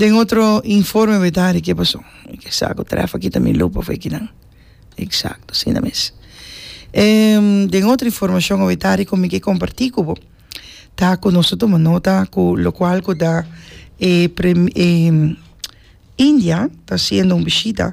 Den otro informe bet hari ke pasó ke sa ku trèf aki ta mi lop of ekinan eksakto asina mes den otro informashon bet hari ku mi ke komparti ku bo ta ku nos ta tuma nota ku lokual ku ta e preme india ta hasiendo un bishita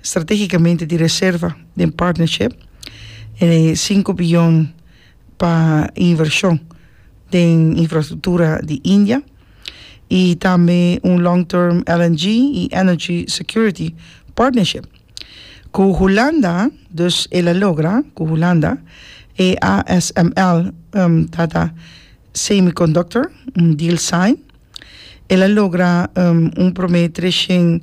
stratégikamente di reserva den partnership en e sinku biyon pa invershon den infrastruktura di India i tambe un long term LNG i energy security partnership ku Hulanda, dus el a logra ku Hulanda e ASML Tata Semiconductor un deal sign, el a logra un promé treshent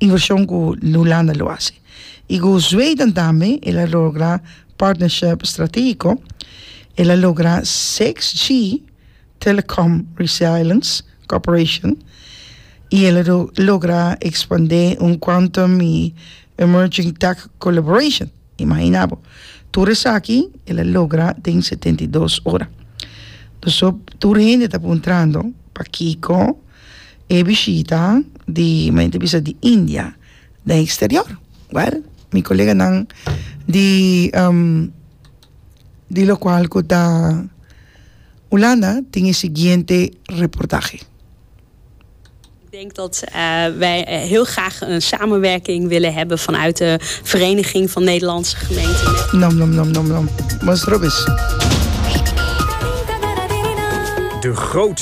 Invershon ku New Landa lo hasi i ku Zweden tambe el a logra partnership strategiko, el a logra six G Telecom Resilience Cooperation i el a logra ekspandé un Quantum i Emerging Tech Collaboration. Imaginá bo, tur esaki el a logra den setenta i dos ora. Nos tur hende ta puntrando pakiko? e bishita di mi ta bisa di India den eksterior wèl mi koleganan di di lokual ku ta Ulanda tin e siguiente reportahe. Ik denk dat wij heel graag een samenwerking willen hebben vanuit de Vereniging van Nederlandse Gemeenten met. Nom nom nom nom nom. Mos robes. De grootste.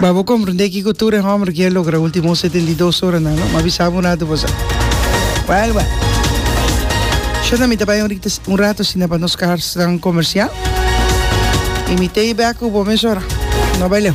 Ba bo komprendé kiko tur e hòmber kia logra último setenta i dos oranan, no? M'a bisaba un ratu pasá. Wèl, wèl. Shon, mi ta bai un rikte, un ratu asina pa nos karsnan komersial i mi tei bèk ku bo mesora. No bai leu.